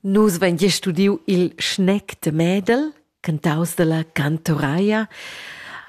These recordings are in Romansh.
Nus vein gia studiu il schnec de Medel, cantaus dalla cantoraia.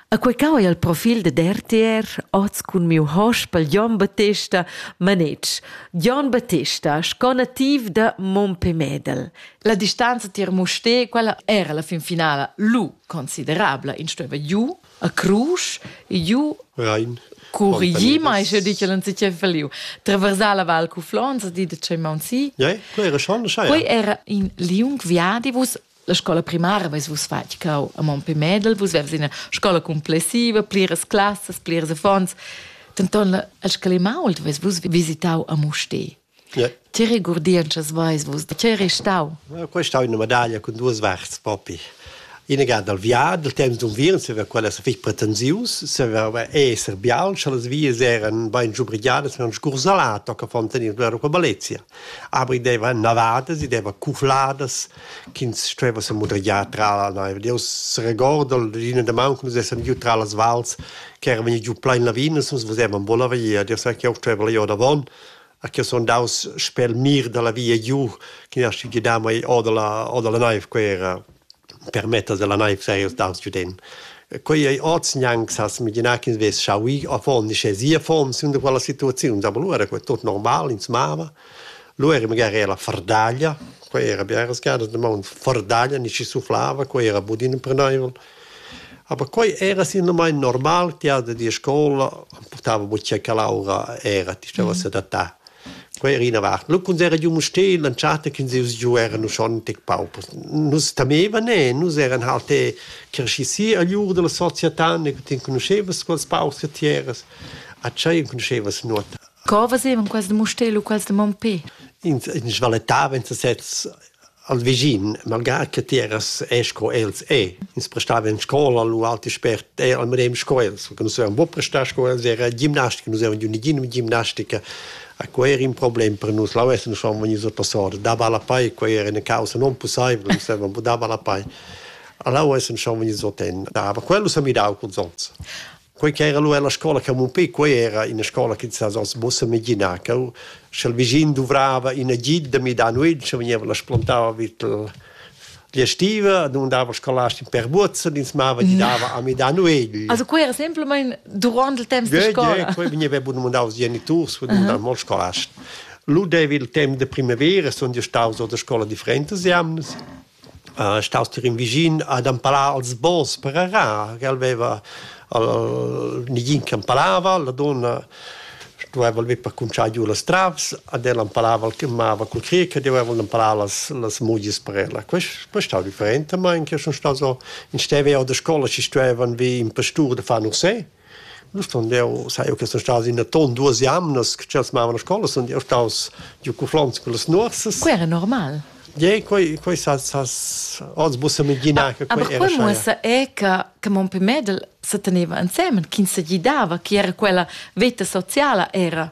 A quei cau ei il profil ded RTR oz cun miu hospel Jon Battesta Manetsch. Jon Battesta, sco nativ da Mompe Medel. La distanza tier Musté, quella era la fin finala lu considerabla, in stueva giu a crusch giu Rein. Curigi mai sche dice l'an si che feliu. Traversar la val cu Flonza di de c'è Mansi. Ja, quei era schon schai. Quei era in liung viadi vus la scola primaria vus vus fatg cau a Monte Medel, vus vers ina scola complessiva, pliras classas, pliras affons. Denton la el scalimau vus vus visitau a Muste. Ti regurdientschas veis vus, da tgei ei stau? Quei ei stau ina medaglia cun duas varts propi. Ina ga dal viadi, dal temps d'unviern, se quella sa fich pretensius, se va esser bial, sche las vias eran bain giubrigiadas mit einem Scursalato che von tenir loro qua Valencia. Aber i deva navadas, i deva cufladas ch'ins stueva se mudrigiar tra la naiv. Io s'regordo l'ina da man come se essam giù tra las vals che eran vegni giù plain lavinas, nus vesevam bolla via. Io sai che io steva là davon, a che sun daus sper il mir dalla via giu ch'ün aschi gidà mai o dalla o dalla naiv quei era per metter dalla naiv seia staus giu den. Quei ei oz gnanc s'has imaginar ch'ins vess schau ir affon, uschè sia affon sün da quella situaziuns, aber lu era quei tot normal, ins mava. Lu era magari era fardaglia, quei era biaras gadas damaun fardaglia, nischi suflava, quei era budin imprenaivel. Aber quei era sinamain normal tiada dir scoula, portava buca quell'aura era, ti steva sedattà. Quei era ina vart. Lu quando era giu Mustér, l'entschatta che nus giu eran schontic paupers. Nus temevan e nus eran halt e cresci si agl ur della società, ne ti enconuschevas quels paurs che ti eras. A tschei enconuschevas nuota. Co facevan quels de Mustér u quels de Mompé? Ins, ins svalettava, ins sez al vischin, malgrà che ti eras e sco els e, ins prestava en scola lu alti spert e al medem sco els, perché nus avevam buc prestà sco els, era gimnastica, nus avevam giu negina gimnastica, a quei era in problem per nus, là vessen nus schon vegnius a passar, dava la pei, quei era una causa non possibile, nus avevam buc dava la pei. A là vessen schon vegnius a ten, aber quello s'ha midau cons onns. quei ch'era lu ella scola Camupé, quei era ina scola che sa oz mussa immaginar che sch'el vischin duvrava in agid da midar nuit, sche vegniva la splantava vid l'estiva, non dava scolasti per buzzen, ins mava di dava a midar nuegl. Also quei era semplamein durant il temps de scola. Quei vegniva bun mandau als geniturs, vegniva mandau mo scolast. Lu devi il temps de primavera, sono io staus a scola differentes jamnas staus tier in vischin ad empalar als bons per arar, che el veva negin che empalava, la donna stueva el per cuntschar giu las travs, ad el empalava el che mava cul cric, doveva el empalar las las mugias per ella. Quest quest stau different, ma in che sun staus in steva jau da scola che stuevan vi in pastur da far nursé Nu sun eu sai eu che sun stas in aton duos jamnas che tschels mavan a scola sun eu staus giu cuflants cullas nuorsas. Quai era normal. Ie, quai quai s'has s'has oz muossa mengina che quai era. Aber quai muossa è che che mon pè Mädel se teneva insemen, ch'ins se gidava, chi era quella veta sociala era.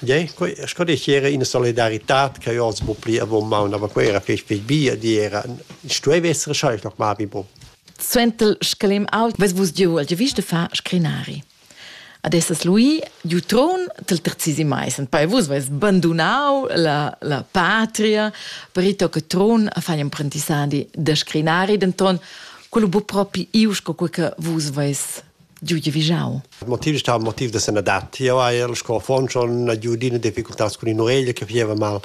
Gie, quei sco dici era ina solidaritad che io oz bu pli avon maun, aber quei era fetg fetg bia, di era, stueva essere scheisch noch mal wie bo. Suenter scalem ault ves vus giu al giavisch de far scrinari. Ad esses lui giu tron del terzisi mais, en poi vus veis bandunau la, la patria per ito che tron a fai imprendissadi de scrinari, denton quello bu propi iu sco quei che vus veis giu giavischau. Motiv stava motiv da sanadad. Io hai sco affon schon giudina difficultats con in oreglia che fieva mal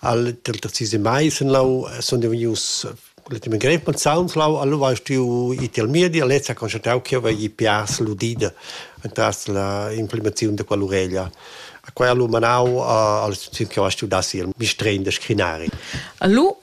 al del terzi mai sen lau son devenius l'ultimo grep man sound lau allo war stu i tel mir di lezza constatau che va i pias ludida entras la implementazione de quell'oreglia a quella lu manau al istituzione che va studassi il mistrein de scrinari. Allo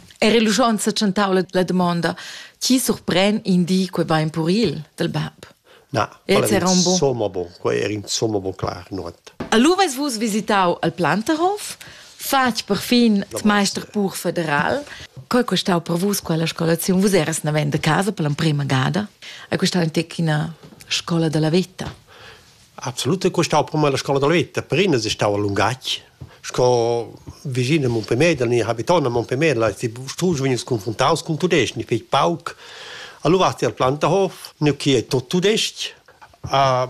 Era l'uschon sa tschentau la, la damonda, chi surpren in di quei va in puril del bab? Na, quella era un bon. insomma bon, quei era insomma bon clar, nuot. Allura eis vus visitau al Planterhof, fatg per fin il meister pur federal. Co è costau per vus quella scolazione? Vus eras naven da casa per l'emprima gada? È costau in tec ina scola della vita? Absolut è stau per me la scola da veta, per ina è stau a lungatg. Sco vicin a Montpellier, da habiton a Montpellier, la ti stusch vegnis confrontaus cun tudesc, ni fetg pauc. Allora vasti al Plantahof, nu che è tot tudesc. Uh,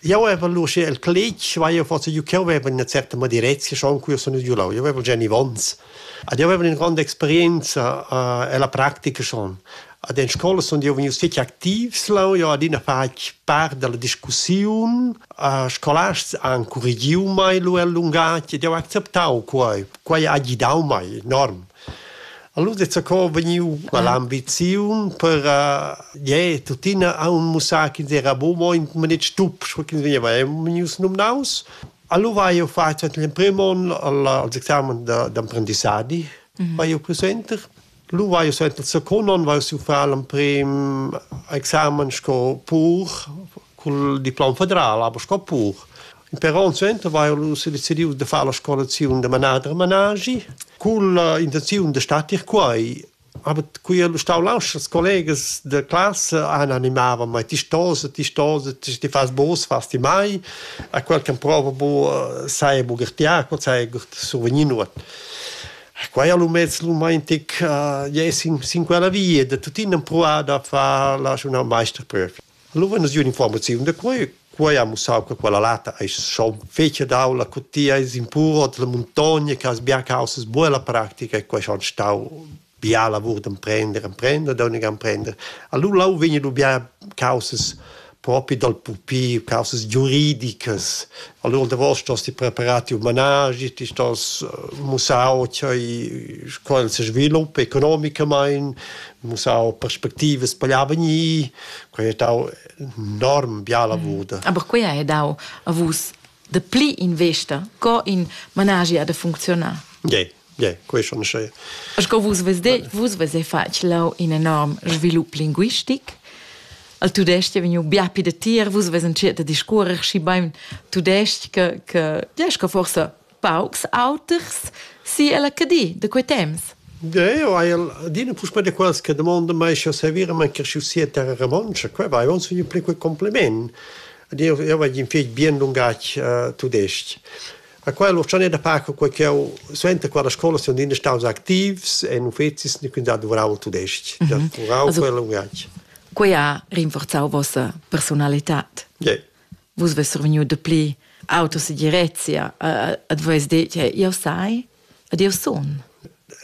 io avevo luce il clic, vai io forse io che avevo una certa madirezza schon qui sono giù là, io avevo Jenny Vons. Ed io avevo una grande esperienza uh, e la pratica schon. Ad en scola sun jeu vegnius fetg activs leu. Jeu adina fatg part dalla discussiun. Scolasts han currigiu mei lu el lungatg ed jeu acceptau quei. Quei ha gidau mei enorm. Allura zaco vegniu quell'ambiziun per je tuttina aunc mussar ch'ins era buc mo in maletg tup, sco ch'ins vegneva vegnius numnaus. Allura hai jeu fatg l'emprim onn als examens d'emprendissadi, vai jeu cul center. lu vai suenter zacunon vai siu far l'emprim examen sco pur cul diplom federal aber sco pur però un suenter vai lu se decidiu de far la scolaziun de manader managi cul intenziun de statir quai aber qui el stau lauschers collegas de classe han animava mai ti stose ti stose ti ti fas bos fas ti mai a quel che prova bu sai bu gertiar co sai survenir nuot Quai ha l'umez romantic uh, sin, sin quella via da tuttina empruar da far la journal meisterprüf. Allora es un'informaziun da quai. Quai ha mussau che quella lata è schon fece d'aula cu ti hai impuro della montagna che has bia causas buona pratica e quai schon stau bia lavur d'emprender, emprender, da unica emprender. Allora là vegni du bia causas propi dal pupi causas giuridicas. Allora davos stos ti preparati un managi, ti stos eh, mussau ch'ei qual se sviluppa economicamain, mussau perspectivas paglia vegni, quei è dau enorm bia lavur. Mm. Aber quei è dau a vus de pli investa co in managi ha de funzionar. Yeah. Yeah, question sche. Sco vus ves de, vus ves e fatg lau in enorm svilup linguistic. Al tudestg è vegnu bia pi de tir, vus ves entschet a discuorer schi bein tudestg che, che, ja, che forse paucs auters si alla cadi de quei temps. Ja, io hai adina puspè de quals che domanda mai sche servire man che sia terra romoncia, quei vai uns vegnu pli quei compliment. Io io vagin fetg bien lungatg uh, tudestg. A quella uschanè da pac quai ch'eu suenter quella scoula sun iina staus activs e in uffezis nu quint da duvrau il tudesc-ch, da duvrau quel lungatg. Quai ha rinforzau vossa personalitad. Yeah. Vus vess survegniu dapli autosegirezia, ad vus detg, jau sai, ed eu sun.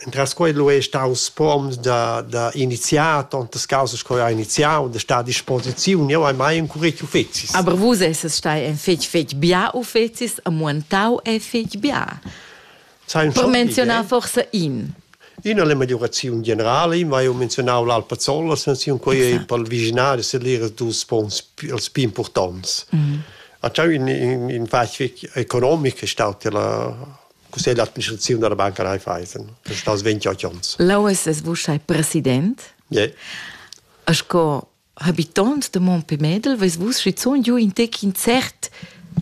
Entras quei lu ei staus spuons da, da iniziar tontas causas che ha iniziau da star a disposiziun. Jeu hai mai encureci uffecis. Aber vus esses stai in fetg fetg bia uffecis e muentau ei fetg bia. Per menzionar forsa in. Ina è la megliuraziun generala, io hai menzionau l'Alpazzolla, senziun quei ei per il viginari sellir ils dus spons els più importants. A ciò in in in fac economic è stato la cussegl d'administraziun della Banca Raiffeisen, che sta als 28 ons. L'OSS vos ei president? Yeah. E sco habitant de Montpellier ves vus schizun giu in tec in cert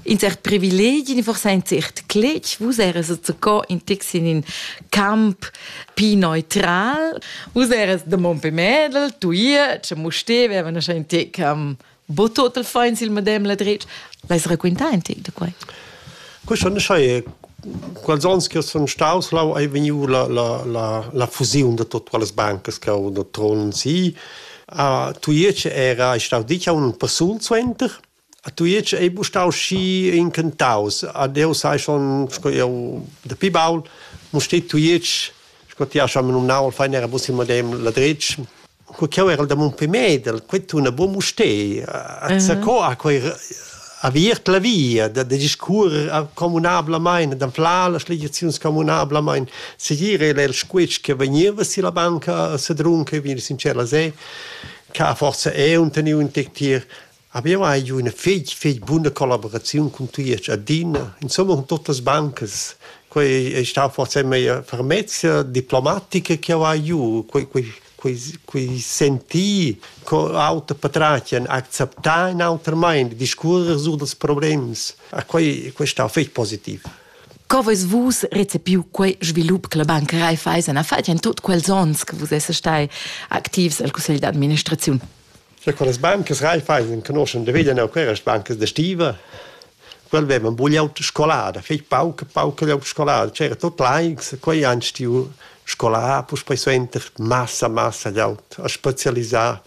in cert privilegi, forse ein cert cletg, vus eres co in tec in in camp pi neutral, vus eres de Montpellier, tu ihr, che mo steveva in tec am Bo total finds il madame la dretg. L'hai raquintà in tec da quai? Questo non sai quals ans che sono staus là hai vegniu la la la la fusione da tutte quelle banche che ho da Tron sì a tuiece era ich stau dicha un person suenter a tuiece ei bu stau schi incantaus a deu sai schon sco eu da pi baul mo ste tuiece sco ti hast am nun nau al fein era bus il madame la dretg co ch'jeu erel da Montpellier, quei tuna buca Mustér. Co ha quei aviert la via da, da discuorer communablamein, da flar las legiaziuns communablamein, segir era il squetsch che vegneva silla banca a Sedrun, che vegni sincer la se, che ha forsa è un teniu un tec tier Abbiamo hai giù üna fich fich buna collaboraziun cun tui e Giadina, insomma cun tuot las bancas. Quai è stà forse meglio fermezza diplomatica che ho hai giù, quei quei quei quei sentir co auter patratgan acceptar in auter mind, discuorrer sur dals problems. A quei quei è stà fich positiv. Co vais vus recepiu quei svilup che la Banca Raiffeisen ha fatg in tut quels onns che vus essas stai activs al cussegl d'administraziun? Scha quellas bancas Raiffeisen enconoschan da veglia neu quellas bancas da stiva, quel vevan bugliau scolada, fetg pauca, pauca glieud scolada, c'era tut laics, quei han stiu scolà, puspei suenter massa, massa glieud a specialisar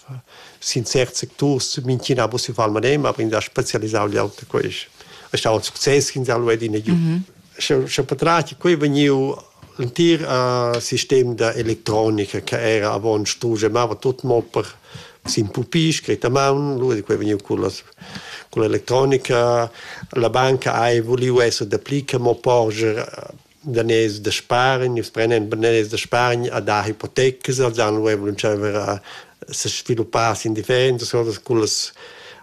sin certs secturs, mintgina ha pussiu far madem, aber ins ha specialisau glieud a quest. È stau ün success ch'ins ha lu adina giu. Scha scha patrat quei vegniu L'entir sistem da electronica che era avon strugemava tut mo per sin pupì scret a maun, lura quei vegniu cullas culla electronica. La banca hai vuliu esser dapli che mo porscher daners da spargn, nus prendem daners da spargn a dar hipotecas, als han lu avon tscheiver a sesviluppar sin differentas cosas cullas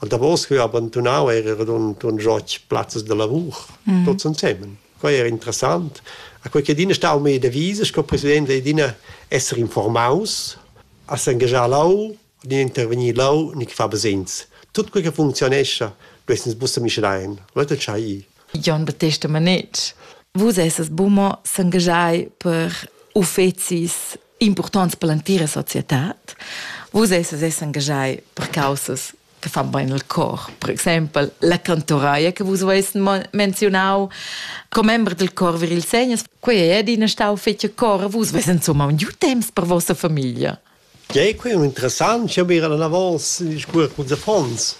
Und davos vi abandonau era radund un joch plazzas de lavur mm. tots ensemen. Quei era interessant. A quei che Dina stau me devise sco president de Dina esser informaus, a s'engagiar lau, ni intervenir lau, ni fa besins. Tut quei che funzionescha, du essens busse mischlein. Leute chai. Jon Battista Manetsch, vus esses bummer s'engagiai per uffecis impurtants per l'entira societad. Vus esses engagei per causas che fan bene il cor. Per exempel la cantoraia che vus avais menzionau, commember del cor vir il segnes, quei è adina stau fetg cor, vus veis insomma un giu temps per vostra famiglia. Ja, è quei interessant, ich habe gerade davos gesprochen mit unseren Fonds.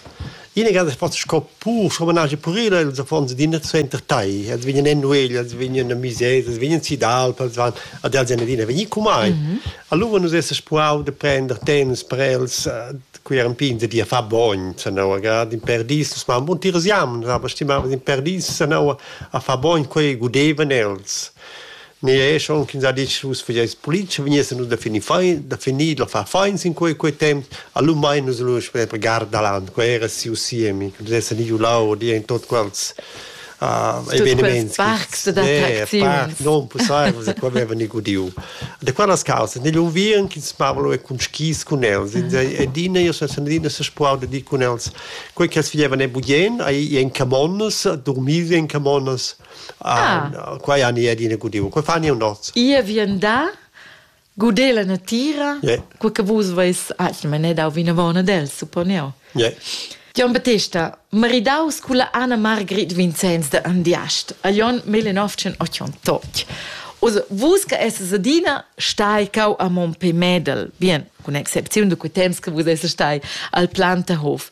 Ina gada fatg sco pur, sco managi purila, ils affons d'ina suenter tai, els vegnan en nuegl, els vegnan a misers, els vegnan si d'alp, els van ad els en adina vegni cu mai. Mm -hmm. Allora nus esses puau de prender temps per els, qui eran pin de dir fa bogn, sanaua, grad in perdis, nus mam bun tiras jam, aber stimavam in perdis, sanaua, a fa bogn, quei gudevan els. Ni è schon ch'ins ha detg vus fageis politica, vegnessen nus da finir fein, da finir da far fein sin quei quei temps, allora mein nus lu sper per Gardaland, quei era siu siemi, che pudesse ni giu là di in tot quels uh, eveniments. Parts ed attracziuns. Non possibile, da qua aveva ni gudiu. Da quellas causes, negli unviern che smavalo e con skis con els, ed ina io sa sanadina se spuau da di con els, quei che els figlievan e bugien, ai in camonnas, dormir in camonnas, Ah. Qua ja ni adina gudiu. Qua fani un noz. Ia vien da guder la natira. Yeah. Qua che vus veis atgna manet dau vinavona del, supponeo. Yeah. Jon Battista, maridaus culla Anna Margrit Vincenz de Andiast, a Jon 1988. Also, vus che esses adina stai cau a Montpellier Medel, bien, con excepziun de quei temps che vus esses stai al Plantahof.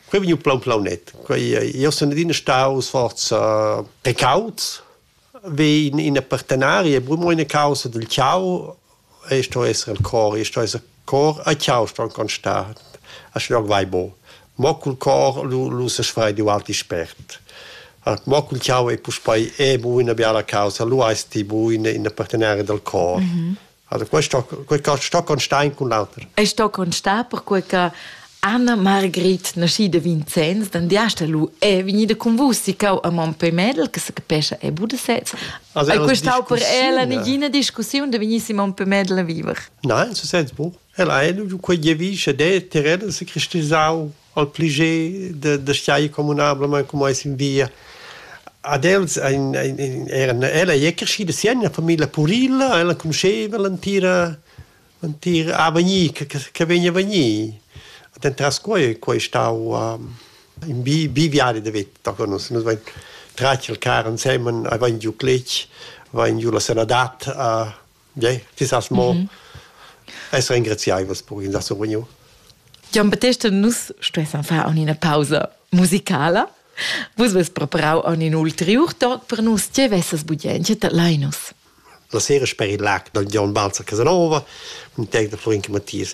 Quei vegniu plan plaunet. Quei, io sun adina staus forza precaut, vi in, in partenaria, brumo ina causa del ciao, e sto essere il cor, e sto essere cor, a ciao sto ancon sta, a schnog vai bo. Mo cul cor lu, lu se sfrei di alti spert. Mo cul ciao e puspei è bu una biala causa, lu esti bu in, in partenaria del cor. Mm -hmm. Also questo, questo sto con stein con l'alter. Ei sto con sta perquei che Anna Margrit nasci de Vincenz, dann diasta lu è vegnida con vus si cau a Mompé Medel, che se capesce è Budasets. Also è questau per ella nigina discussione de vegnisse Mompé Medel a viver. Nein, so sens buch. El eine, quegli vi che de terrena se cristallisau al pleiger da, da stai communablamain cum ais in via. Ad els ein, ein, ein, eran, ella ei crescida si en una famiglia purilla, ella conosceva l'entira l'entir avegnir che, che vegna vegnir. Dentras quei, quei stau um, in bi, bi viadi da vita. Nus, nus vein tratg il car ensemen, avein giu cletg, avein giu la sanadat a, Bien, ti sas mo mm -hmm. essere engraziaivos per in da survegniu. Gian Battesta, nus stuessan far una pausa musicala. Vus vest preparau un ulterior toc per nus. Tge vesses budien? Tge te lainus? La sera per il lac del Gian Balzer Casanova, un tec de Florin Mattias.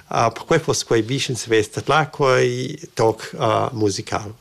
Ah, perquei fuss quei bugen svess tadlar quei toc musical.